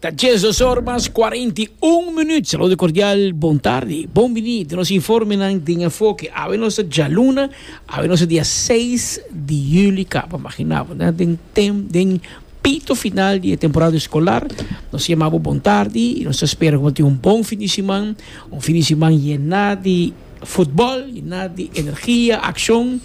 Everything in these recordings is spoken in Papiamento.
Ta Jesus Ormas, 41 minuut. Saludo cordial, bon tarde. Bon bini di nos informenan den enfoke. Awe nos ta djaluna, awe nos ta dia 6 di juli kaba. Maginabo, na den tem, den pito final di e temporada escolar. Nos ta yamabo bon tarde y nos ta spera cu bo tin un bon fin di siman. Un fin di siman yena di. Futbol i na di energia, akshon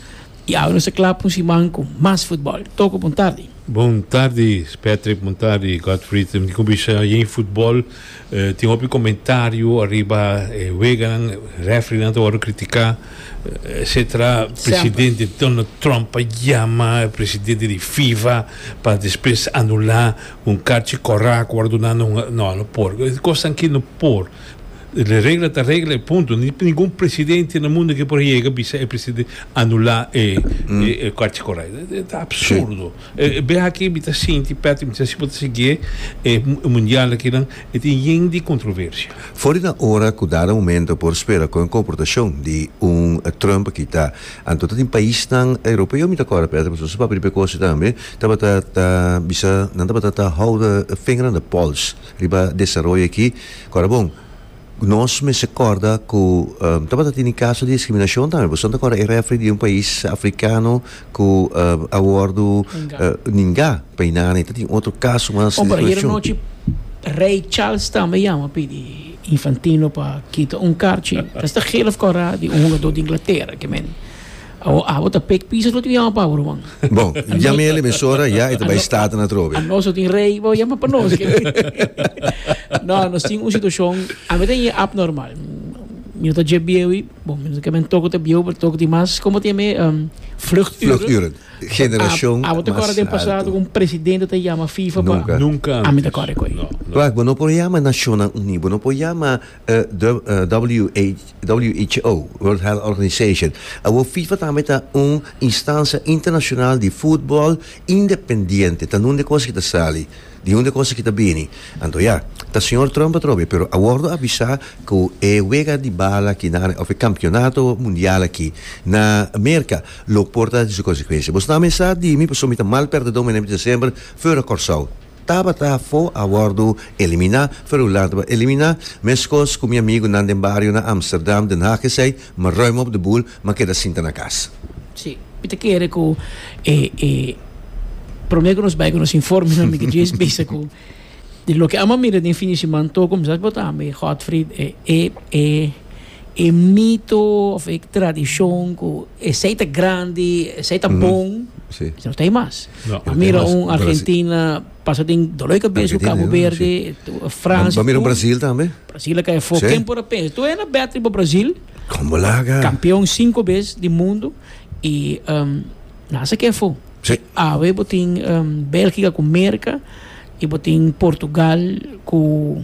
i awe nos a kla pa un siman ku mas futbol. Toko, bon tardi. Bon tardi Patrick, bon tardi Godfried. Mi kuminsha yen e futbol. Tin hopi komentario ariba e weganan, refrinan ta wòrdu kritiká, etsetera. Presidente Donald Trump a yama e presidente di fifa pa despues anulá un karchi korá ku wòrdu duná na un. No, no por. E kosnan aki no por. E regla ta regla y punto. No tin ningun presidente na mundo ke por yega bisa e presidente anula e e Korte Korai. E ta absurdo. Bia aki mi ta sinti, Patrick, mi ta si bo ta siguié e mundial akinan, e tin yen di kontroversia. For di nan ora ku dada momento por spera kon e komportashon di un Trump a kita. Anto ta tin paisnan europeo, mi ta kòrda, Patrick, pasobra su papia di prekosio tambe, tabata ta bisa nan tabata ta hou de finger on the pulse. Riba desaroyo aki, kora bon, nos mester korda ku tabata tini kaso di diskriminashon tambe. Boso no ta korda e refri di un pais afrikano ku a wòrdu ningá pa e nana i ta tin otro kaso mas di diskriminashon. Rei Charles tambe yama pidi Infantino pa kita un karchi, ta esta gele of kora di un hugadó di Inglatera kimen. Abo ta pek piso lo tin ku yama pabro man. Bo, yami el emisora ya e ta bai staten atrobe. A nos lo tin rei, bo yama pa nos. No, nos tin un situashon, ami ta yama apnormal. Mi no ta dje bieu i, bo, mi no ta keme toko ta bieu, pero toko di mas, komo ta yama e vluchturen. Vluchturen. Generashon mas alto. Abo ta kòrda den pasado ku un presidente ta yama fifa pa. Nunka antes. Nunka antes. Ami ta kòrda ku ei. No, no. Bo no por yama nashonnan uní, bo no por yama. who, World Health Organization, awor fifa tambe ta un instancia internacional di futbol independiente, ta nun de cosa ki ta sali, di un de cosa ki ta bini. Anto ya, ta señor Trump atrobe, pero a wordo avisa cu e wega di bala ki nan, of e campeonato mundial aki na Merca lo por ta di su consecuencia. Boso tambe sa di mi, pasobra mi ta mal perdedor, mi a na biba semper fora Corsou. Tabata fo a wòrdu eliminá, Ferulán tabata eliminá, meskos ku mi amigunan den bario na Amsterdam, Den Haag esei, mi rui mi op de boel, mi a keda sinta na kas. Sí, mi ta kere ku e e promé ku nos bai ku nos informe nan mi ta djis bisa ku di loke amo a mira den fin di siman, tur kuminsá a botá mi Godfried e e e E mito of e tradishon ku esei ta grandi, esei ta bon, esei no ta ei mas. Bo mira un Argentina pasa den doló di kabes ku Kabo Berde, Fransi. Bo mira un Brasil tambe. Brasil a kai afó. Ken por a pensa? Tur esnan bètri pa Brasil. Kon bo laga? Kampeon sinku bes di mundu i nan a sa ke afó. I awe bo tin Belgika ku Merka i bo tin Portugal ku.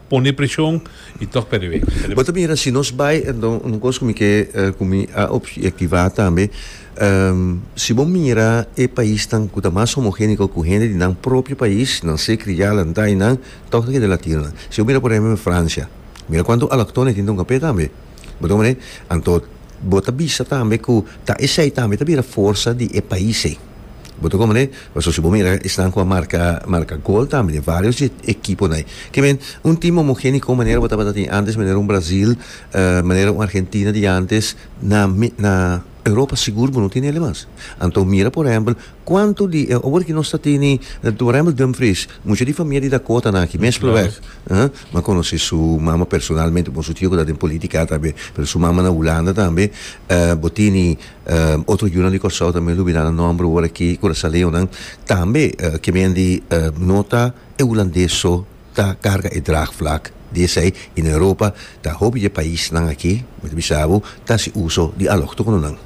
pone preshon i tòg pèrdè wek. Bo ta mira si nos bai enton un kos ku mi ke ku mi a objetivá tambe si bo mira e paisnan ku ta mas homogeniko ku hende di nan propio pais nan se kria la nta i nan tòg ta kende latinonan si bo mira por ehèmpel en Francia mira kuantu alòktononan e tin den un kapé tambe bo ta wone anto bo ta bisa tambe ku ta esei tambe ta bira forsa di e pais ei. Bo ta komoné? Pasobra si bo mira esnan ku a marka marka gol tambe den varios di e ekiponan ei. Ke men, un tim homogéniko manera bo tabata tin antes, manera un Brazil, manera un Argentina di antes, na na Europa sigur bo no tin elei mas. Anto mira por ehèmpel kuantu di e ober ku nos ta tini, por ehèmpel Dumfries, mucha di famia di Dakota nan aki mespre wèg. Bo a konosé su mama personalmente, bon su tio ku ta den polítika tambe, pero su mama na Hulanda tambe. Bo tini. otro yunan di Kòrsou tambe lo bira nan nòmber ora ki kurasaleonan tambe ke men di no ta e hulandes so ta karga e draagvlak di esei i na Europa ta hopi di e paisnan aki mi ta bisa bo ta hasi uso di alòktononan.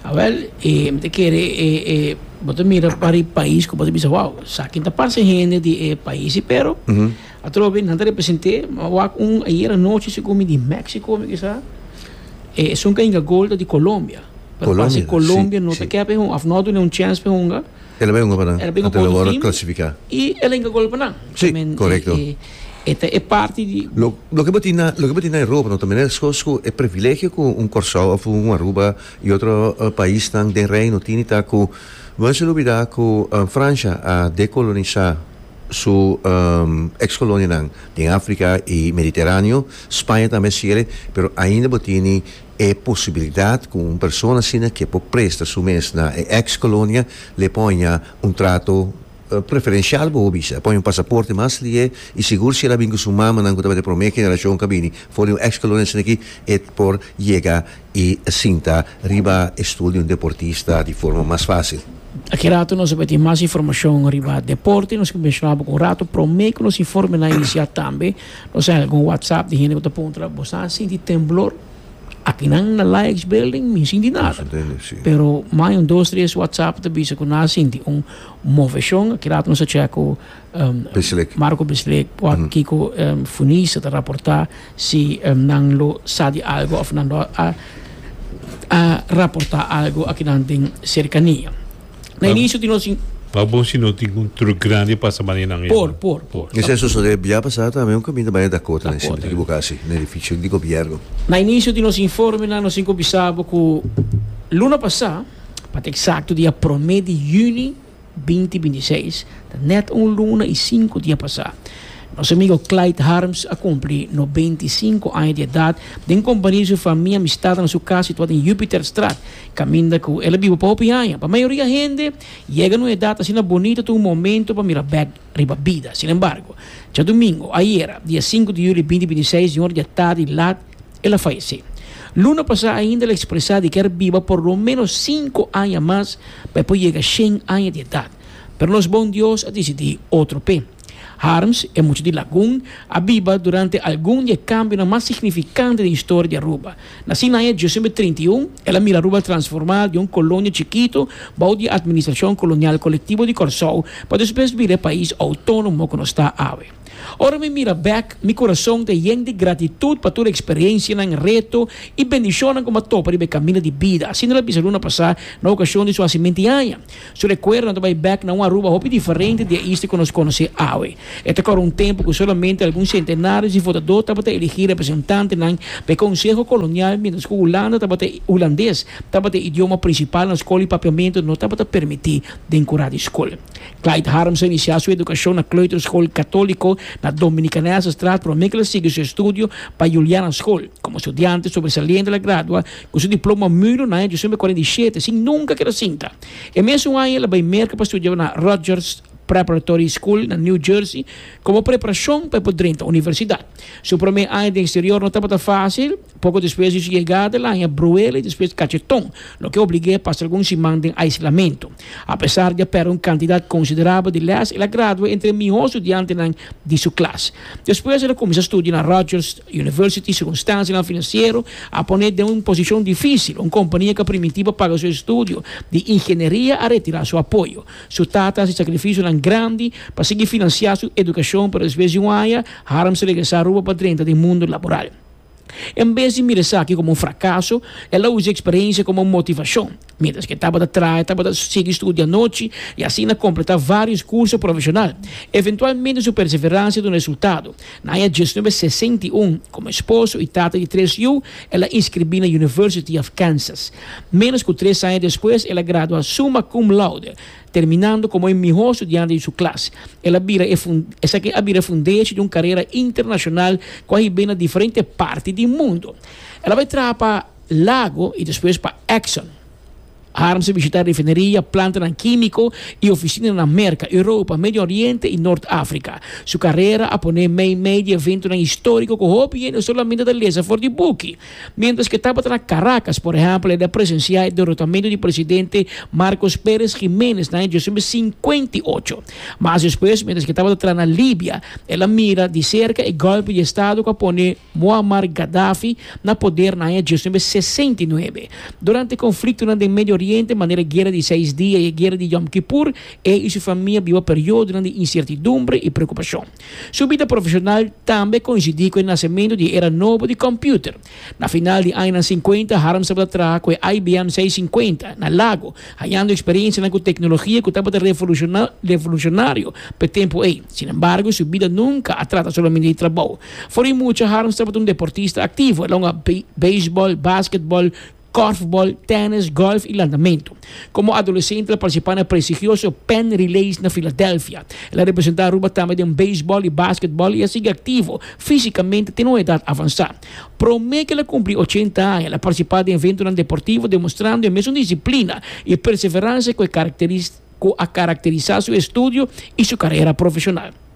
A wèl e mi ta kere e e bo ta mira pari pais ku bo ta bisa wou esakin ta parse hende di e paisi pero Atrobe nan ta represent'é, ma wak un ayer anochi segun mi di Mexico mi kisa e esun ka hinga gol ta di Colombia. Pero parse Colombia no ta ke pe hunga of no a dune un chance pe hunga. El a bay hunga pa nan. El a bay hunga pa otro team. Clasifica. Y el a hinga gol pa nan. Si, correcto. E ta e parti di. Loke bo tin na loke bo tin na Europa no ta mester scos cu e privilegio cu un Corsou of un Aruba y otro paisnan den Reino tini ta cu no mester olbida cu Francia a decolonisa. su ex kolonianan den Africa y Mediteraneo, Spaña tambe a cierra, pero ainda bo tini e posibilidad cu un persona asina ke por presta su mes na e ex colonia le poña un trato preferencial bobo bisa, poña un pasaporte mas lihe y sigur si el a bin cu su mamanan cu tabata e prome generacion cu a bini for di un ex colonia asina aki e por yega I sinta riba e stul di un deportista di forma mas fásil. Aki ratu nos a bay tin mas informashon riba deporte. Nos ke menshonabo ku un ratu promé ku nos informe nan inisiá tambe nos a hèga un whatsapp di hende ku ta puntra la boso a sinti temblor aki nan na Laïcs Building mi sinti nada pero mai un dos tres whatsapp ta bisa ku nan a sinti un moveshon. Aki ratu nos a chèk ku Marco Bislick ua Kiko Funice ta raportá si nan lo sa di algu òf nan lo a raportá algu akinan den Serkania. Na inisio tin nos. Pa bo si no tin un truk grandi pasa manera nan ey nan. Por, por. Mester a sosodé bia pasá tambe un kaminda baya Dakota na e sentro di bo ka hasi na edifisio di gobièrnu. Na inisio di nos informenan nos tin ku bisa bo ku luna pasá, pa ta eksakto dia promé di yüni, binti binti seis, ta nèt un luna i sinku dia pasá, nos amigu Clyde Harms a kumpli no beinti i sinku aña di edat den kompania di su famia amistadnan na su kas situá den Jupiterstraat, kaminda ku el a biba pa hopi aña. Pa mayoria hende, yega na un edat asina bonitu ta un momentu pa mira bèk riba bida. Sinembargo, djadumingu, ayera, dia sinku di juli binti binti seis, di un ora di atardi lat, el a falesé. Luna pasá ainda el a ekspresá di ke er biba por lo ménos sinku aña mas pa e por yega shen aña di edat. Pero nos bon Dios a disidí otro p'e. Harms, e mucha di Lagun, a biba durante algun di e kambionan mas signifikante den historia di Aruba. Nasí na aña diosen be trinta i un, el a mira Aruba transformá di un kolonia chikitu bou di e Atministrashon Kolonial Kolektibo di Kòrsou pa despues bira e pais outónomo ku nos ta awe. Ora mi mira bek, mi kurason ta yen di gratitut pa tur eksperiensianan, reto i bendishonnan ku mi a topa riba e kaminda di bida, asina el a bisa luna pasá na okashon di su hasimenti aña. Su rekuerdonan ta bai bek na un Aruba hopi diferente di e isti ku nos konosé awe. E ta kòrda un tempu ku solamente algun sentenarios di votadó tabata elegí representantenan pa e konseho kolonial miéntras ku Hulanda tabata hulandes tabata e idioma prinsipal na skol i papiamentu no tabata permití den ku radiskol. Clyde Harms a inisiá su edukashon na kleuterskool katóliko na Dominikanaansestraat promé ke el a sigui su estudio pa Juliana Skol. Komo studiante sobresaliente el a gradua ku su diploma mulo na aña diosen mil kuarenta i shete sin nunka keda sinta. E mesun aña el a bai Merka pa studia na Rutgers Preparatory School na New Jersey komo preparashon pa e por drenta universidat. Su promé aña den eksterior no tabata fásil. Poco despues di su yegada el a haña bruela y despues cacheton, loke oblig'é pasa algun siman den aislamento. Apesar di a perde un cantidad considerabel di les, el a gradua entre e mihó studiantenan di su klas. Despues el a cuminsa studio na Rutgers University. Circunstancianan financiero a pone'é den un posicion dificil. Un compania cu a primintí pa paga su estudio di ingenieria a retira su apoyo. Su tata a haci sacrificionan grandi pa sigui financia su educacion, pero despues di un aña Harms a regresa Aruba pa drenta den mundo laboral. En bes di mira esaki komo un frakaso, el a usa e eksperensia komo un motivashon. Miéntras ke tabata traha, e tabata sigui studia anochi i asina kompletá vários kurso profeshonal. Eventualmente su perseveransia duna resultado. Na aña diesnuebe sesenta i un, komo esposo i tata di tres yu, el a inskribí na University of Kansas. Ménos ku tres aña despues el a gradua summa cum laude. Terminando komo e mihó studiante di su klas, el a bira e esaki a bira e fundechi di un karera internashonal ku a hib'é na diferente parti di mundu. El a bai traha pa Lago i despues pa Exxon. Harms a bishitá refineria, plantanan kímiko i ofisinanan Merka, Europa, Medio Oriente i Nort Afrika. Su karera a pon'é meimei di eventonan históriko ku hopi hende solamente ta lesa for di buki. Mientras ke tabata na Caracas, por ehèmpel, e da presensiá e derotamentu di presidente Marcos Pérez Jiménez na e djosembé sinkuenta i ocho. Mas despues, mientras ke tabata traha na Libia, el a mira di serka e gòlpe di estado ku a pone Muammar Gaddafi na poder na aña djosembé sesenta i nuebe. Durante konfliktonan den Medio Oriente, manera e guera di seis dia i e guera di Yom Kippur, e i su famia biba periodonan di insertidumbre i preokupashon. Su bida profeshonal tambe koinsidí ku e nasementu di e era nobo di kòmpiuter. Na final di añanan sinkuenta, Harms tabata traha ku e IBM seissinkuenta na Lago, hañando eksperiensianan ku teknologia ku tabata revolushonario pa e tempu ei. Sinembargo, su bida nunka a trata solamente di trabou. For di mucha, Harms tabata un deportista aktivo. El a hunga beisbòl, basketbòl, kòrfbòl, tènis, gòlf i landamentu. Komo adolesente el a partisipá na prestigioso Penn Relays na Filadelfia. El a representá Aruba tambe den beisbòl i basketbòl i a sigui aktivo físikamente te un edat avansá. Promé ku el a kumpli ochenta aña, el a partisipá den eventonan deportivo demostrando e mesun disiplina i perseveransha ku a karakterisá su estudio i su karera profeshonal.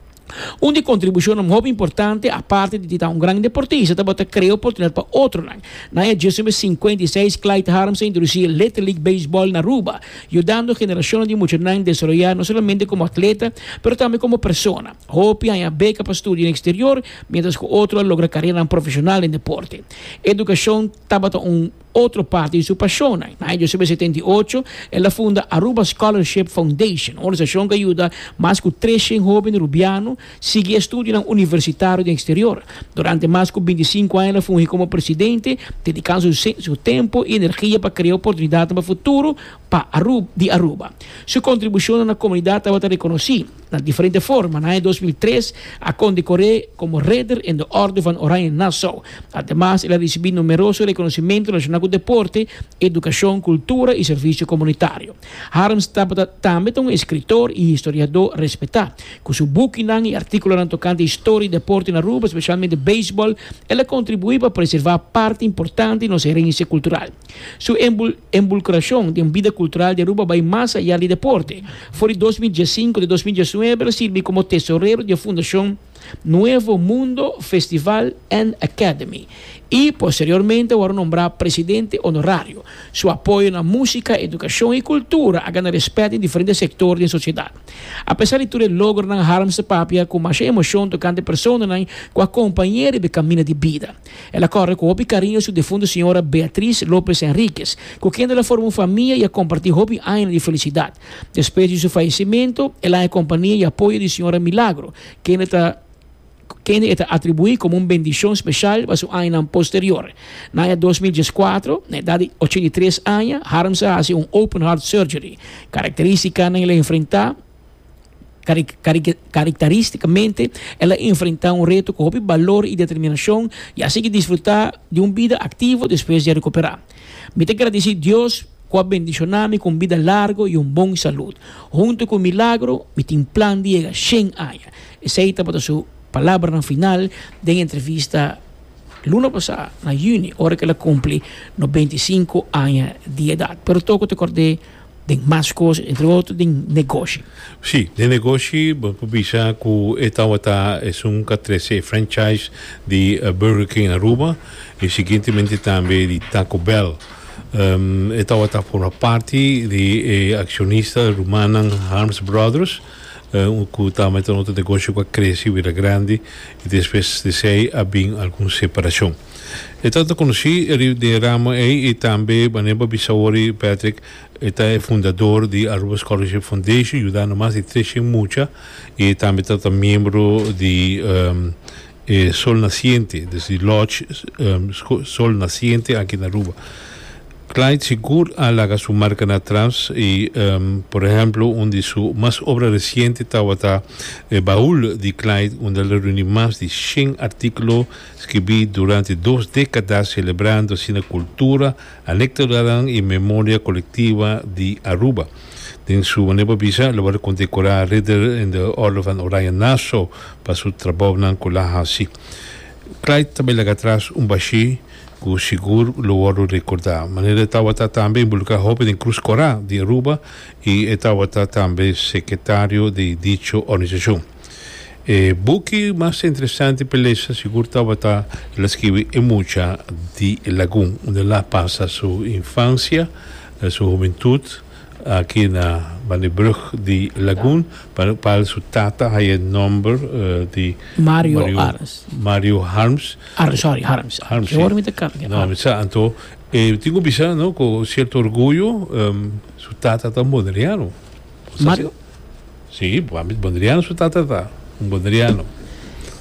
Un di kontribushonnan hopi importante, aparte di di ta un gran deportista, tabata krea oportunidat pa otronan. Na e djisumber sinkuenta i seis, Clyde Harms a introdusí e Little League Baseball na Aruba, yudando generashonnan di muchanan desaroyá no solamente komo atleta, pero tambe komo persona. Hopi a haña beka pa studio na eksterior, miéntras ku otro a logra kareranan profeshonal den deporte. Edukashon tabata un. otro parti di su pashon. Na aña diosebi a setenta i ocho, el a funda Aruba Scholarship Foundation, un organisashon ku a yuda mas ku tres shen hoben rubiano sigui e studionan universitario den eksterior. Durante mas ku binti sinku aña el a fungi komo presidente, dedikando su tempu i energia pa krea oportunidatnan pa futuro pa di Aruba. Su kontribushonnan na komunidat tabata rekonosí. Na diferente forma, na aña dos mil tres a konde Coré komo Ridder in de Orde van Oranje Nassau. Ademas el a risibí numeroso rekonosimentu relashoná ku deporte, edukashon, kultura i servisio komunitario. Harms tabata tambe ta un eskritor i historiadó respetá. Ku su bukinan i artíkulonan tokante historia i deporte na Aruba, spesialmente beisbòl, el a kontribuí pa preservá parti importante di nos herensia kultural. Su enbulcracion den bida cultural di Aruba bay mas ayá di deporte. For di dos mil diesinco te dos mil diesnuebe el sirbi como tesorero di e fundacion Nuevo Mundo Festival and Academy y posteriormente a wòrdu nombrá presidente honorario. Su apoyo na música, educacion y cultura a gana respet den diferente sector di e sociedad. Apesar di tur e logronan Harms ta papia cu masha emocion tocante personanan cu a acompañ'é riba e caminda di bida. El a kòrre ku hopi kariño su difuntu señora Beatriz López Henríquez, ku kende el a forma un famia i a kompartí hopi añanan di felisidat. Despues di su fayesimentu, el haña kompania i apoyo di señora Milagro, kende ta kende e ta atribuí komo un bendishon speshal pa su añanan posterior. Na aña dos mil dieskuatro, na edat di ochenta i tres aña, Harms a hasi un open-heart surgery. Karakterístikanan el a enfrentá. Kariktarístikamente, el a enfrentá un reto ku hopi balor i determinashon i a sigui disfrutá di un bida aktivo despues di a rekuperá. Mi ta gradisí Dios ku a bendishoná mi ku un bida largu i un bon salud. Huntu ku Milagro, mi tin plan di yega shen aña. Esei tabata su palabranan final den entrevista luna pasá na yüni, ora ku el a kumpli noventa i sinku aña di edat. Pero tokun ta kòrd'é. den mas cos, entre otro den negoshi. Sí, den negoshi bo por bisa cu e tawata esun ca trece e franchise di Burger King Aruba y siguientemente tambe di Taco Bell. E tawata forma parti di e accionista rumannan Harms Brothers cu tambe ta un otro negoshi cu a crece bira grandi y despues di esey a bin algun separacion. E ta ta conoci e rib di e ramo ey y tambe manera bo bisa awor Patrick e ta e fundador di Aruba Scholarship Foundation yuda no mas di tres cien mucha y e tambe ta ta miembro di e Sol Naciente dus di Lodge Sol Naciente aki na Aruba. Clyde sigur a laga su marca na atras y por ehemplo un di su mas obra reciente tawata e baul di Clyde unda el a reuni mas di cien articlo Skibí durante dos dékadas selebrando asina kultura, anektodanan i memoria kolektiva di Aruba. Den su manera pa bisa, lo wòrdu kondekorá Ridder in de Orde van Oranje-Nassau pa su trabounan ku el a hasi. Clyde ta bai laga atras un bashí ku sigur lo wòrdu rekordá. Manera e tabata tambe inbulukrá hopi den Krus Korá di Aruba i e tabata tambe sekretario di dicho organisashon. E buki mas interesante pa lesa sigur tabata el a skibi E mucha di e lagun, unda el a pasa su infansia, su humentud aki na banda e brug di lagun, pa pa su tata haya e nomber di Mario Arns, Mario Harms, Arns sorry Harms, Harms si, awor mi ta cambia, no mi sa, anto e tin cu bisa no cu cierto orgullo su tata ta un Bonaireano. Mario? Sí, bo a mit Bondriano su tata ta un Bondriano.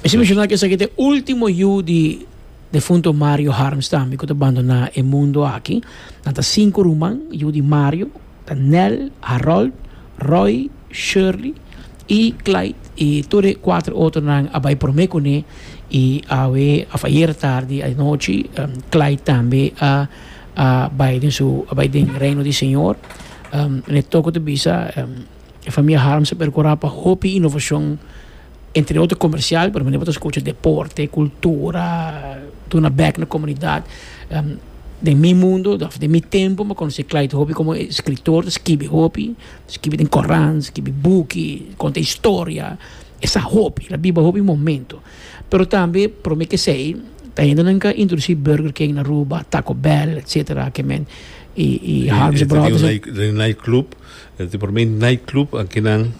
Mi si menciona cu esaki ta e ultimo yu di defunto Mario Harms tambe cu ta bandona e mundo aki. Nan ta cinco ruman, yu di Mario ta Nel, Harold, Roy, Shirley y Clyde y tur e cuatro otronan a bay prome cu ne y awe of ayer tardi anochi Clyde tambe a bay den su a bay den Reino di Señor. E toko ta bisa e famia Harms a percura pa hopi innovacion entre otro comercial pero menen bo ta scucha deporte, cultura, duna bek na comunidad. Den mi mundo of den mi tempo mi conoci Clyde hopi como e scritor, ta scibi hopi, ta scibi den coran, ta scibi buki, conta historia, e sa hopi, e la biba hopi momento. Pero tambe prome kesey ta hende nan ka introduci Burger King na Aruba, Taco Bell etc. Kemen y y Harms Brothers. E ta tin un night club, e ta prome night club aki nan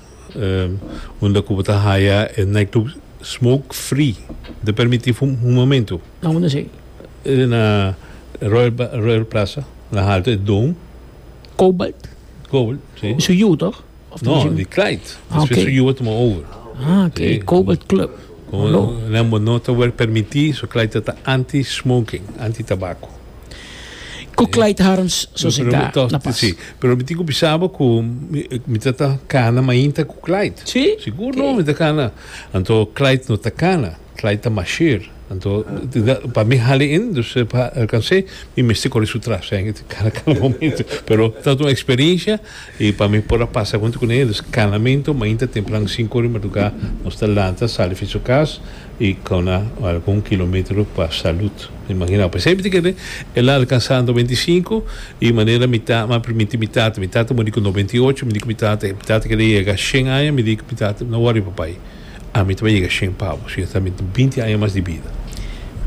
unda cu bo ta haya e night club smoke free, bo ta permiti fuma un momento. Na unda esey? E na Royal Plaza, na Halto e Dome. Cobalt? Cobalt, si. Su yu toch? Of No, Benjamin? di Clyde. Ah, Después oké. su yuwe tuma over. Ah, oké. Sí. Cobalt Club. Como Lo. Lambo no ta wel permití, so Clyde ta ta anti-smoking, anti-tabako. Ku Clyde Harms sosintá Pero to- na pas. sí. Pero mi tin ku bisaba ku mi, mi ta ta kana mainta ku Clyde. Sí? Sigur Oké. no, mi ta kana. Anto Clyde no ta kana. Clyde ta mashir, anto pa mi hali in, dus pa alcans'é mi mester kore su tras en e kada kada momento, pero ta un experiencia y pa mi por a pasa huntu cu ne'e, dus cada mento mainta tempran sinku ora di madruga nos ta lanta sali fi su cas y cauna algun kilometro pa salud, imagin'e pues hende ke de el a alcansa noventa i sinku y manera mi ta mi a permiti mi tata, mi tata muri cu noventa i ocho mi di cu mi tata, mi tata kere yega shen aña mi di cu mi tata no worry papai. Ami ta bai yega shen pa bo, si no ta mi tin binti aña mas di bida.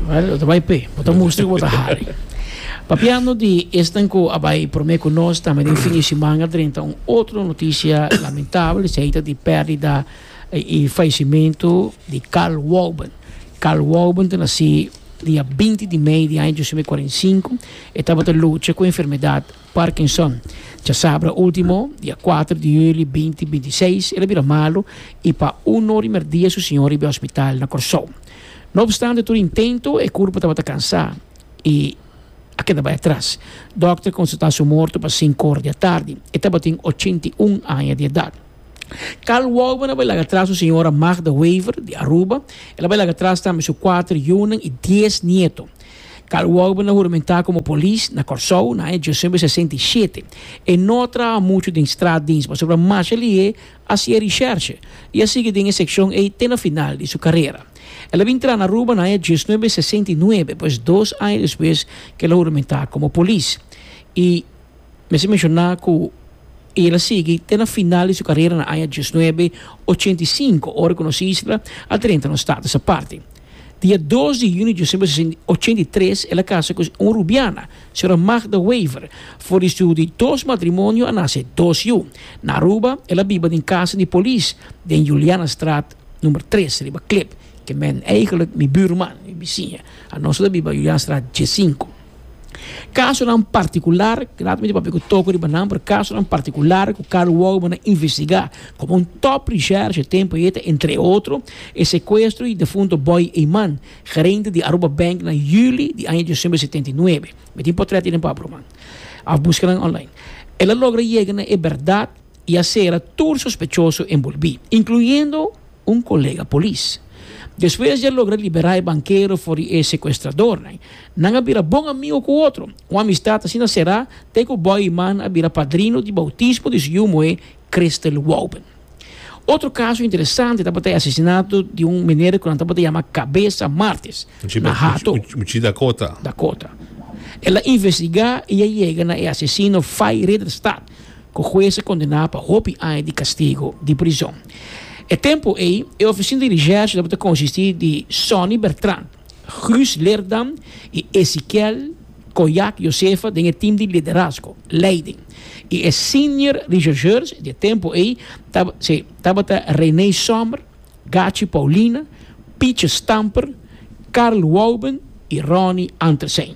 Well, bo ta bai p'e, bo ta mustra ku bo ta hari. Papiando di esnan ku a bai promé ku nos, tambe den fin di siman a drenta un otro notisia lamentabel, esei ta di pèrdida i falesimentu di Carl Walben. Carl Walben ta nasi dia binti di mei di aña dos mil kuarenta i sinku. E tabata lucha ku enfermedat. Parkinson, chasabra ultimo, dia kuater di hüli binti binti i seis, el a bira malu i pa uno di merdia su siñor riba e hospital na Kòrsou. No opstante tur intento, e kurpo tabata kansá i a keda bai atras. Dòkter konstatá su morto pa sinku or di atardi. E tabatin ochenta i un aña di edat. Carl Walben a bai laga tras su señora Magda Wever di Aruba. El a bai laga tras tambe su kuater yunan i dies nieto. Carl Walben a huramentá komo polis na Kòrsou na aña diosember sesenta i shete. E no a traha muchu den straatdiens pasobra masha lihe a hasié rishèrshe i a sigui den e sekshon ei te na final di su karera. El a bin traha na Aruba na aña diesnuebe sesenta i nuebe, pues dos aña despues ku el a huramentá komo polis. I. Mester mencioná cu el a sigui te na final di su carera na aña diesnuebe ochenta i sinku, ora cu nos isla a drenta na un status aparte. Dia dos di junio di diesnuebe ochenta i tres el a casa cu un rubiana, señora Magda Wever. For di su di dos matrimonio a nace dos yu. Na Aruba el a biba den casa di polis den Julianastraat number tres riba Klip, ke men, eigenlijk, mi buurman, mi bisiña. Anos ta biba Julianastraat diesinku. Kasonan partikular, nan ta mester papia ku toko riba nan, pero kasonan partikular ku Karl Wouwman a investigá komo un tòp risèrsh e tempu ei ta entre otro e sekuestro di defunto Boy Eyman, gerente di Aruba Bank na yüli di aña diosember di setenta i nuebe. Mi tin potrèt ei den papia ruman òf buska nan online. El a logra yega na e bèrdat i a sera tur sospechoso enbolbí, inkluyendo un colega polis. Despues di a logra libera e bankero for di e secuestradornan, nan a bira bon amigo cu otro. Un amistad asina cera ta e cu Boiman a bira padrino di bautismo di su yu moe Christel Wouben. Otro caso interesante tabata e asesinato di un meneer cu nan tabata yama Cabeza Martes na Hato, Dakota. El a investiga y a yega na e asesino Fay Rederstad, ku hues a kondená pa hopi aña di kastigu di prizon. E tempu ei, e ofisina di recherche tabata konsistí di Sonny Bertrand, Guus Leerdam i Eziquiel Coyac Josefa den e tim di liderazgo, leiding, i e senior rechercheurs di e tempu ei tabata René Sommer, Gachi Paulina, Pietje Stamper, Carl Wouben i Ronnie Antersein.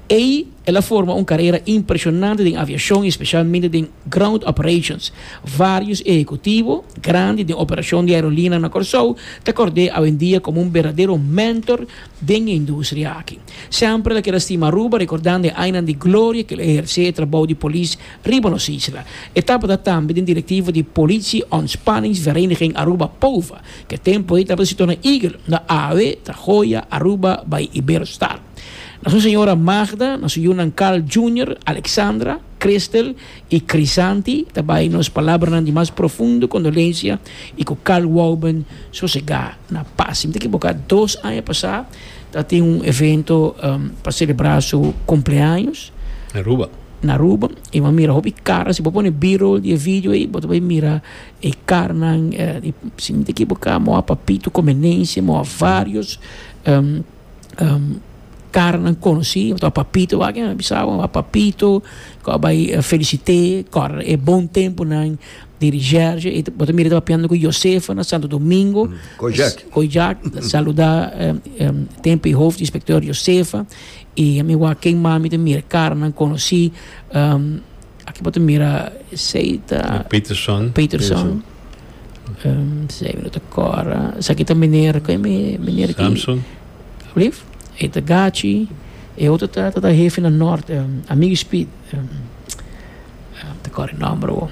Ei el a forma un karera impreshonante den aviashon i spesialmente den ground operations. Vários ehekutivo grandi den operashon di aerolina na Kòrsou ta kòrd'é awendia komo un berdadero mentor den e industria aki. Semper el a keda stima Aruba rekordando e añanan di gloria ku el a ehersé e trabou di polis riba nos isla. E tabata tambe den direktivo di Politie Ontspanningsvereniging Aruba, POVA, ku e tempu ei tabata situá na Eagle, na Awe, Trajoya, Aruba, bai Iberostar. Na su señora Magda, na su yunan Carl Junior, Alexandra, Christel y Crisanti ta bay nos palabranan di mas profundo condolencia y cu Carl Wouben sosega na paz. Si mi ta equivoca dos aña pasa ta tin un evento pa celebra su cumpleaños Aruba. na Aruba y bo a mira hopi cara, si bo pone B-roll di e video ey bo ta bay mira e caranan di si mi ta equivoca moa Papito Comenense, moa varios. karanan konosí ta papito wak a bisa bo a papito kos a bai a felisité kòrdade e bon tempunan di rishèrshe i bo ta mira e ta papiando ku yosefo na santo domingo kojak ta saluda tempu e hof di inspektor yosefo i ami wak ken mami ta mira karanan konosí. Aki bo ta mira esei ta. Peterson. Peterson. Esei no ta kòrda. Esaki ta meneer, koe mi meneer aki? Samson. Alsjeblieft. E ta Gachi. E otro ta ta hefi na nort, Amigo Speed. no ta kòrda e nòmber awor.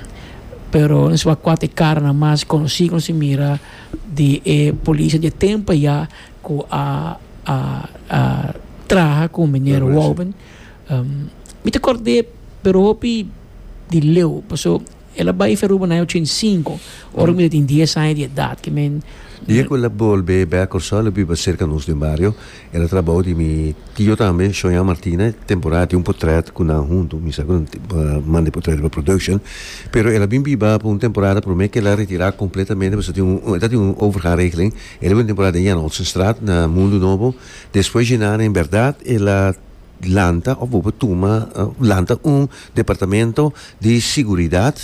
Pero nos wak kua ta e karanan mas konosí ku nos a mira di e polisnan di e tempu ayá ku a a a traha ku meneer Wouben. Mi ta kòrd'é, pero hopi di Leo, pasobra el a bai fi Aruba na aña ochenta i sinku, ora mi ta tin dies aña di edat, ke mi. Dje ku el a bolbe bèk Kòrsou, el a biba serka nos den bario. El a trabou di mi tio tambe, Shoña Martina, temporada a tin un potrèt ku nan huntu, mi sa ku nan man di potrèt riba production, pero el a bin biba pa un temporada promé ku el a retirá kompletamente pasobra tin un, el ta tin un overga regeling, el a biba un temporada den Jan Olsenstraat na Mundo Nobo, despues dje nan en bèrdat el a Lanta of bo por tuma lanta un departamento di siguridad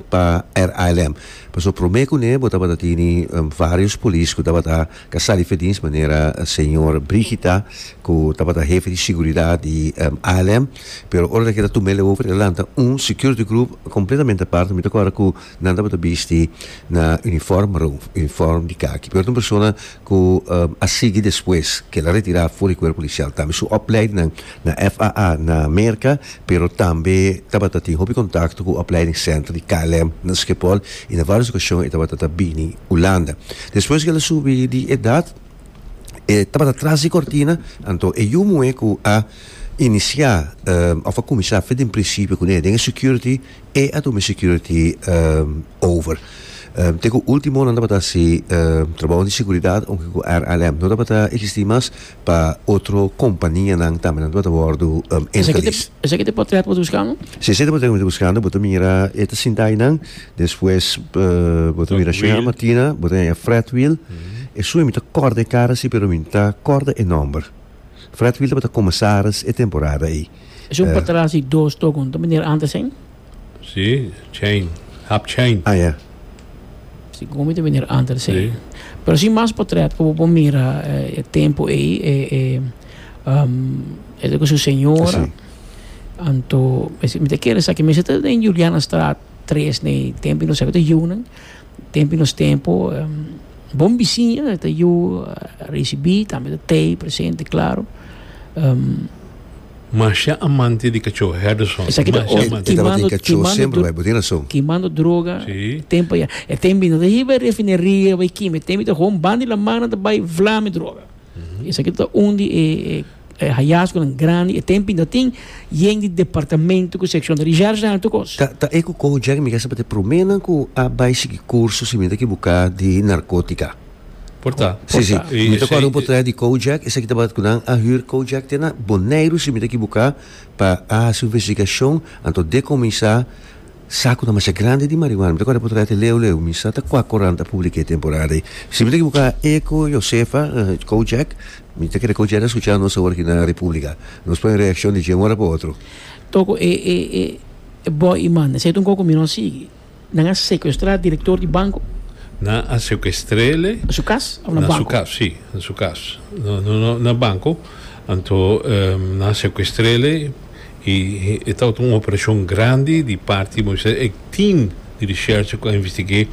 pa RILM pasobra prome cu ne bo tabata tini varios polis cu tabata ca sa di Fedins manera señor Brigita cu tabata hefe di siguridad di RILM pero ora ta keda tuma el over el lanta un security group completamente aparte mi ta acorda cu Nan tabata bisti na uniform maro, uniform di kaki. Pero ta un persona ku a sigui despues ku el a retirá for di kuerp polisial tambe. Su opleidingnan na FAA na Merka, pero tambe tabata tin hopi kontakto ku opleiding senter di KLM na Skipol i na vários okashon e tabata ta bini Hulanda. Despues ku el a subi di edat e tabata tras di kòrtina, anto e yu muhé ku a inisiá òf a kuminsá afe den prinsipio kuné den e security, E Atomic Security over. Te ku ultimo nan tabata hasi trabou di seguridad aunke ku RLM no tabata existi mas pa otro kompanianan tambe nan tabata wordu interlis. Esaki ta e potret ku bo ta buskando? Si, se ta e potret ku mi ta buskando. Bo ta mira e ta sinta ayi nan, despues bo ta mira Shea Martina, bo ta haña Fred Wiel. E su mi ta kòrda e kara si pero mi no ta kòrda e nòmber. Fred Wiel tabata komesaris e temporada ei. Es un patras di dos tokon, ta manera antes en? Si, chain, hap chain. Ah, ya. Si, komo mi ta manera antes en. Si. Pero si mas potret ku bo por mira e tempu ei, e, e, um, e loke su señora. Si. Anto, mi ta kere sa ke mester ta den Julianastraat tres, nei Tempe Inocente, ta yiu nan. Tempu i nos tempu bon bisiña ta yu risibí tambe ta t'ei presente klaru. Mashá amante di kachó Herderson mashá amante. E tabatin kachó semper bai bo tin rason. Kimando droga tempu ayá e tempu i no ta hiba e refineria bai kima e tempu i ta hon bandi laman nan ta bai vla mi droga. Esaki ta un di e hayasgonan grandi, e tempi ta tin yen di departamento ku sekshon ta di Jars Alto kos. Ta ta e ku Kojak mi kasa pa ta e promé nan ku a bai sigui kurso si mi ta kibuká di narkotika. Por ta. Si si, mi ta kòrda un potrèt di Kojak, esaki tabata ku nan a hür Kojak te na Boneiru si mi ta kibuká pa a hasi un investigashon anto dekominsá. Saku ta masha grandi di marihuana. Mi ta kòrda por traha te leu leu. Mi sa ta kua korant a publik'é temporada ei. Si mi ta ekiboká, Eko, Josefa, Kojak, mi ta kere Kojak ta skuchá nos awor aki na Republika. Nos pone reakshon di dje un ora pa otro. Toko e e e e bòi i manda. Seta un koko mi no sigui. Nan a sekuestrá direktor di banko. Nan a sekuestr'ele. Na su kas òf na banko? Na su kas, sí. Na su kas. No, no, no na banko. Anto nan a sekuestr'ele. I e tabata un operashon grandi di parti di Moises. E tim di risherchi ku a investig'é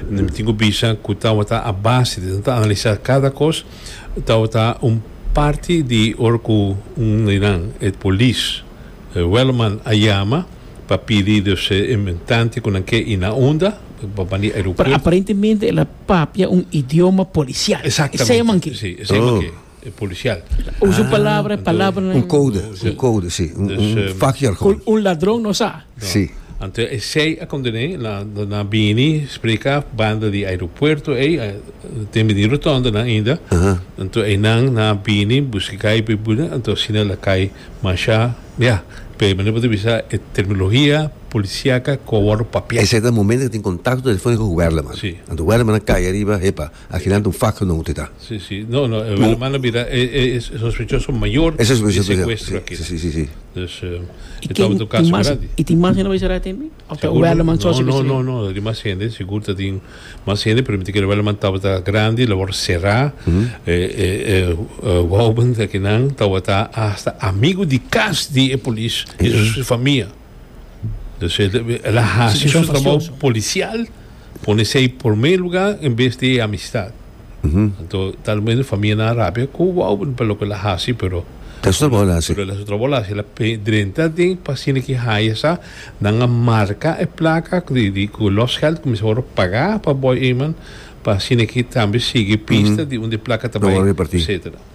mi tin ku bisa ku tabata a base di nan ta analisá kada kos tabata un parti di ora ku un di nan e polis Wellerman a yama pa pidi dus e tante ku nan ke i na unda pa bani aeropuerto. Pero aparentemente el a papia un idioma polisial. Exactamente. Esei e man ke. Si, esei e man ke. E policial. Usa un palabra, e palabra nan. Un code, un code, si. Un, un um, vakjargon. Un, un ladron no sa. Si. Anto e sei a condené, na, na bini spreka banda di aeropuerto ei, a, den bini rotonda nan ainda. Aha. Anto einan na bini buski kai pe buna, anto asina la kai masha, ya. Pe mane bo ta bisa e terminologia policiaca cu a wordo papiá. Esei ta momento cu tin contacto telefonico cu Werleman. Si. Anto Werleman a kai ariba, hepa. Aginan un fak nou te ta. Si si no no e Welleman a bira e e e sospechoso mayor di secuestro aki ta. Si si si. Dus e tabata un caso grandi. Y tin mas hende bay será tambe? Of ta Welleman soso ki sali? No no no tin mas hende sigur ta tin mas hende pero mi ta kere Welleman tabata grandi lo wor sera e e e Wouben aki nan tabata hasta amigo di cas di e polis y su famia. Dus el a hasi su trabou polisial, pone sei promé lugá en bes di e amistat. Anto talmente famianan rapia ku wou pa loke el a hasi pero, El a hasi su trabou, el a hasi, pero el a hasi su trabou, el a hasi, el a drenta den pasinda ki haya sa nan a marka e plaka di ku los gèld ku mester wòrdu pagá pa Boy Eman pasinda ki tambe sigui pista di unda e plaka ta bai etsetera.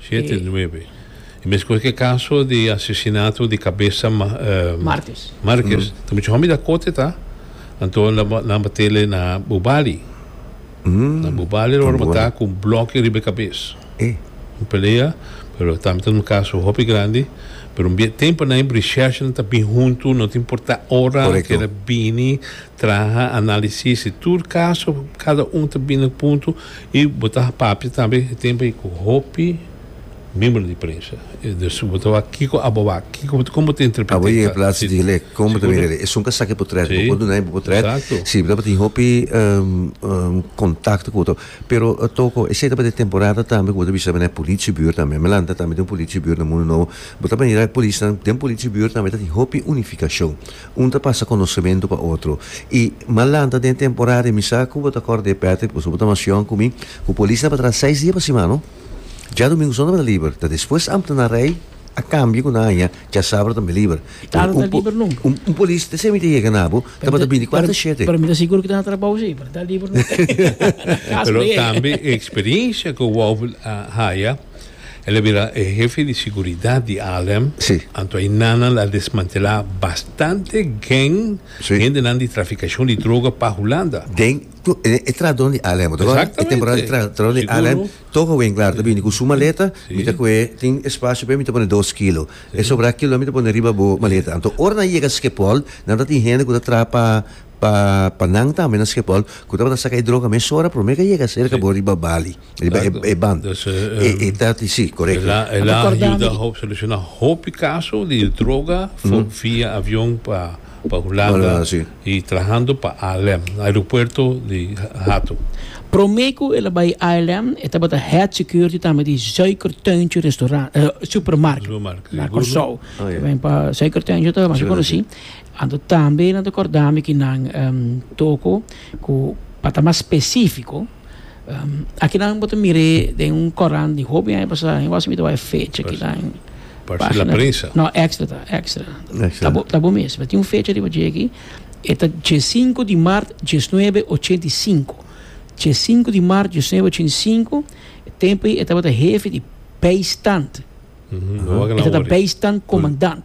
Siete, nuebe. E meskos ku e kaso di asesinato di kabesa Markes. Markes. Ta mucha hòmber ta kote ta. Anto nan a batele na bubali. Na bubali lo a remata ku un bloki riba e kabes. Un pelea, pero tambe ta un kaso hopi grandi. Pero un tempu na e brishèshnan ta bin huntu, no ta importá ora ke ta bini traha analisis tur kaso, kada un ta bini punto. I bo ta papia tambe e tempu ei ku hopi miembro di prensa. Dus bo ta wak kiko abo wak, kiko, kon bo ta interpret'é. Abo yega e plats di Gilek, kon bo ta mira elei? Esun ka sak e potret, bo por duna e bo potret, si, bo tabata tin hopi kontakto ku otro. Pero Toko, esei tabata e temporada tambe ku bo ta bishaba na e polichibuurt tambe. Mi a lanta tambe den un polichibuurt na Mundu Nobo, bo ta mira e polisnan, den polichibuurt tambe ta tin hopi unifikashon. Un ta pasa konosementu pa otro. I m'a lanta den temporada di misa ku bo ta kòrda di Patrick, pasobra bo ta mas yòn ku mi, ku polis na patrá seis dia pa simana. Dja Domingu Sòn na tabata liber, ta despues Amtenaar Rei a kambia ku nan haña dja Sabado tambe liber. Pero un po, un, un polis te semi ta yega na bo, tabata binti kuater a shete. Pero mi ta sigur ku ta na trabou si, pero ta liber no ta. Pero tambe e eksperiensia ku Wolf a haya. El a bira e hefe di siguridat di Alem, Sí. anto ayina nan a desmantelá bastante geng, Sí. hendenan di trafikashon di droga pa Hulanda. Den, tu, e, e trahdon di Alem, bo ta kòrda? E temporada di Exactamente. tra, trahdon di Alem, Seguro. todo hobenklaar ta bini ku su maleta, Sí. mi ta kuhé, tin espasio p'e, mi ta pone dos kilo. E sobrá kilonan mi ta pone riba bo maleta. Anto, ora nan yega Skepol, nan ta tin hende ku ta traha pa, pa, pa nan tambe na Skepol, ku tabata saka e droga mesora, promé ke a yega serka Sí. bo riba Bali. E, e, e ban. Dus, eh, E, e tati, si, correcto. Ela, ela Abe kordami. ayuda ho, soluciona hopi caso di droga fu- via avion pa, pa Hulanda Hulanda, si. y trahando pa ALM, aeropuerto di Ha- Hato. Prome cu el a bay ALM, e tabata head security tambe di Zuiker Tuintje Restaurant, eh, Supermarket. Supermarket, Na seguro. Curaçao. Oh, ja. Tabata Zuiker Tuintje ta mas Sí, conoci. Anto tambe nan ta cordami cu nan, em, toko cu pa ta mas specifico, Akinan bo ta mir'é den un korant di hopi aña pasá. Ain wòs mi ta wak e fecha kinan. Parse La Prensa. No, Extra ta. Extra. Extra. Ta bo mes. Tin un fecha riba dje aki. E ta diesinko di mart diesnuebe ochenta i sinku. Diesinko di mart diesnuebe ochenta i sinku. E tempu ei e tabata hefi di bijstand. E tabata bijstandkomandant.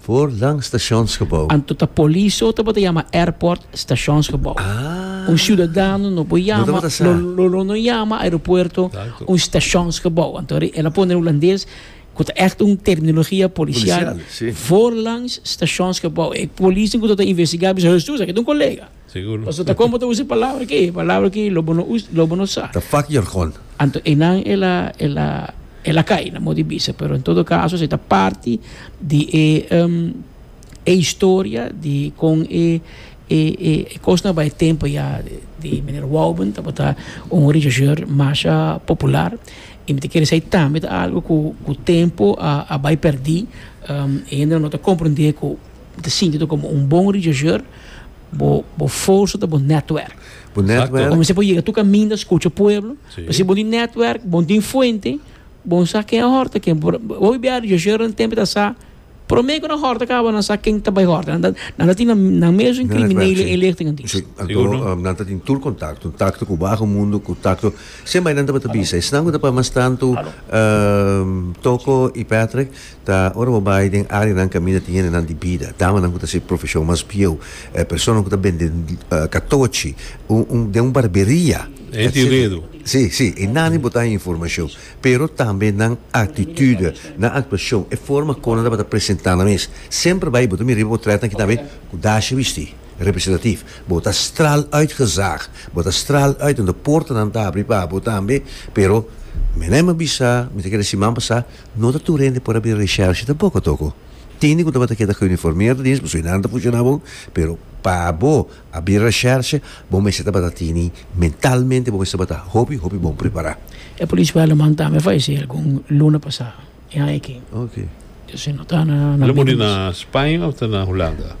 Voor lang stationsgebouw. Anto ta police o tabata yama airport stationsgebouw. Un ciudadano no por yama, lo lo no yama aeropuerto un stationsgebouw. Anto e el a pone hulandes cu ta echt un terminologia policial. Voor langs stationsgebouw. E policen cu ta ta investiga a bisa, Hesus, aki ta un colega. Seguro. Pasobra ta kon bo ta usa e palabra aki, e palabra aki lo bo no usa, lo bo no sa. Ta fak jargon. Anto enan el a, el a, el a kai na mot di bisa, pero en todo caso esei ta parti di e e historia di kon e e e e kosnan a bai e tempo ya di meneer Wouben tabata un rechercheur masha popular i mi ta kere sa e tambe ta algo ku ku tempo a a bai perdí e hende no ta komprendé ku Bo ta sinti bo komo un bon rechercheur, bo bo forsa ta bo netwerk. Bo netwerk. Bo mester por yega tur kaminda, skucha pueblo. Pasobra si bon tin netwerk, bon tin fuente, bon sa ken a hòrta ken. Bo a bia rechercheur nan tempo ta sa promé ku nan hòrta kaba nan sa ken ta bai hòrta. Nan ta nan ta tin nan mesun kriminel e inlichting anto. Si, anto nan ta tin tur kontakto, takto ku baho mundu ku takto siempre nan tabata bisa esnan ku ta pa mas tantu Toko i Patrick. ta ora bo bai den areanan kaminda tin hendenan di bida, damanan ku ta hasi profeshon mas bieu, personanan ku ta bende katochi den un barberia, etsetra. Si, si, e nan e botá e informashon, pero tambe nan aktitude, nan aktuashon, e forma kon nan tabata presentá nan mes. Semper bai bo ta mira riba bo trèt nan kita be ku dasha bistí, representativ. Bo ta straal uit gezag, bo ta straal uit unda portanan ta abri pa bo tambe, pero meneman bisa, mi ta kere si man pasá, No ta tur hende por a bin reshershe tampoko toko. Tin hende ku tabata keda ku uniformeerd di esnan, su inan ta fushona bon, pero pa bo a bin reshershe bo mester tabata tini mentalmente bo mester tabata hopi hopi bon prepará. E polisman alaman tambe a falesé algun luna pasá. E han e kin? Oke. Dios e no ta na. El a muri na Spaña of ta na Hulanda?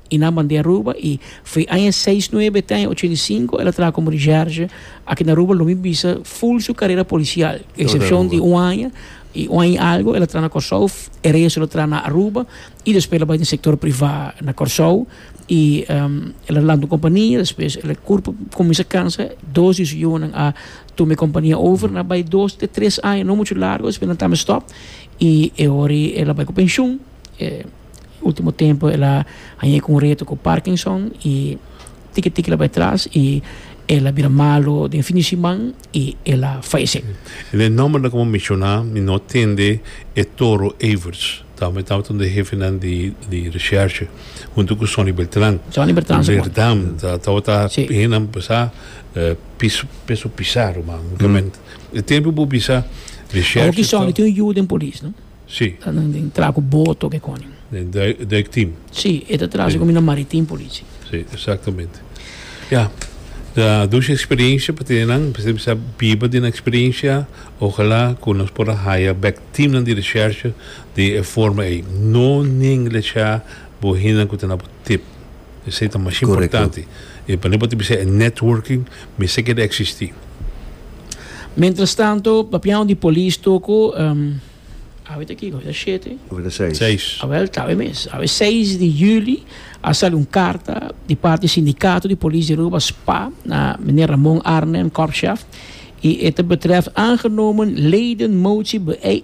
I nan band'é Aruba i f'e aña seis nuebe te aña ochenta i sinku el a traha komo recherche aki na Aruba lo mi bisa ful su karera polisial eksepshon di un aña i un aña i algu el a traha na Kòrsou e resto el a traha na Aruba i despues el a bai den sektor privá na Kòrsou i el a lanta un kompania despues el a kurp kuminsha kansa dos di su yunan a tuma e kompania over nan a bai dos te tres aña no muchu largu despues nan tamba stòp i e ora i el a bai ku penshun. E ultimo tempo el a haña con un reto cu Parkinson y tiki tiki la bay tras y el a bira malo den fin di siman y el a fayece. En e nombernan cu bo menciona mi no tende e Toro Averts. Tabatin e tabata un di e hefenan di recherche hunto cu Sonny Beltran. Sonny Beltran ta cual. Berdam ta tabata bihinan bisa Peso Pizarro man. E tempo bo bisa recherche. Awor ki Sonny tin un yu den polis no. Si. Ta nan den tra ku boto ke konin. Den duik team. Si, e ta tra si ku mi na maritim polici. Si, exactamente. Ya, ta dushi experiencia pa tene nan, mi sa biba di nan experiencia, ojalá ku nos por a haya bek teamnan di recherche di e forma ei. No nin lecha bo hindenan ku ta na bo tip. Esei ta mas importante. E manera pa ta bisa e networking mester keda existi. Mientras tanto, papiao di polis toko, awe ta kiko? Awe ta shete? Awe ta seis. Seis. Awel, ta awe mes. Awe seis di juli a sali un karta di parti di Sindikato di Polis di Aruba, spa, na meneer Ramon Arnhem, korpschef, i e ta betrèf aangenomen ledenmotie, be.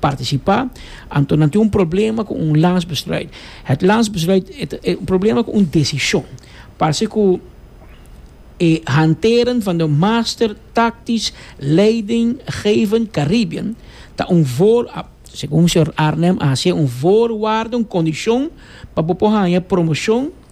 partisipá, anto nan tin un problema ku un landsbesluit. Het landsbesluit e ta e un problema ku un desishon. Parse ku e hanteren van de master taktisch leidinggevend Caribbean ta un voor, a, segun señor Arnhem a hasié un voorwaarde, un kondishon, pa bo por haña promoshon,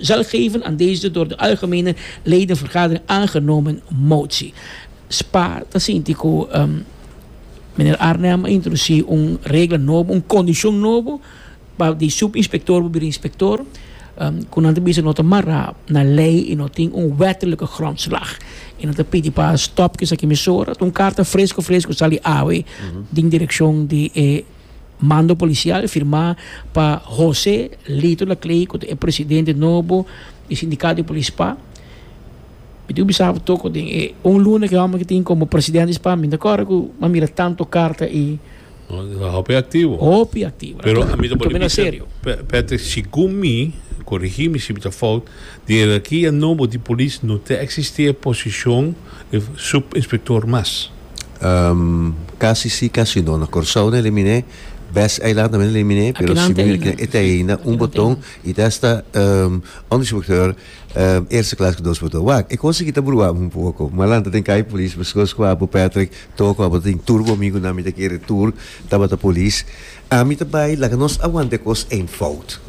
zal geven aan deze door de algemene ledenvergadering aangenomen motie. Spa ta sinti cu meneer Arnhem a introduci un regla nobo, un condicion nobo pa di subinspector por bira inspector, cu nan ta bisa no ta mara na ley y no tin un wettelijke grondslag. Y nan ta pidi pa stop cu esaki mesora. Ta un carta fresco fresco sali awe den direccion di e Mando policial firmá pa José Lito Laclay cu ta e presidente nobo di Sindicato di Polis Spa. Mi tin cu bisa abo toco den e un luna cu e homber tin como presidente di Spa mi no ta corda cu mi a mira tanto carta y. No, mi ta hopi activo. Hopi activo. Pero mi ta por di bisa Patrick, segun mi, corigi mi si mi ta fout, den hierarquia nobo di polis no ta existi e posicion di subinspector mas. Casi si casi no. Na Corsou na eliminé, Best Eiland tambe na eliminé, pero Akinan te Sibuney Eiland. te eina un Akinan te boton Eiland. i ta hasta um, onderinspecteur um, eerste klas ku dos boton. Wak, e kos aki ta bruháme un poko. Malanta den kai polis, pasobra ku Apo Patrick, toko, abo tin tur ku mi ku nan mi ta kere tur tabata polis. Ami ta bai laga nos a wanta e kos één fout.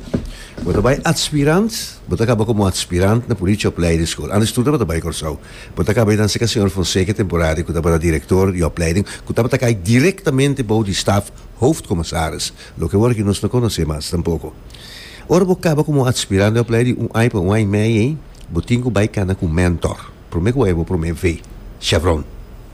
Bo ta bai atspirant, bo ta kaba komo atspirant na Politia Opleiding School. Antes tur tabata bai Kòrsou. Bo ta kaba e danse ka señor Fonseca Temporari ku tabata direktor di opleiding, ku tabata kai direktamente bou di staf Hoofdcommissaris, loke wor aki nos no konosé mas tampoko. Ora bo kaba komo atspirant di opleiding un ai pa un ai mei ei, bo tin ku bai kana ku mentor. Promé ku bai bo promé ve, chevron.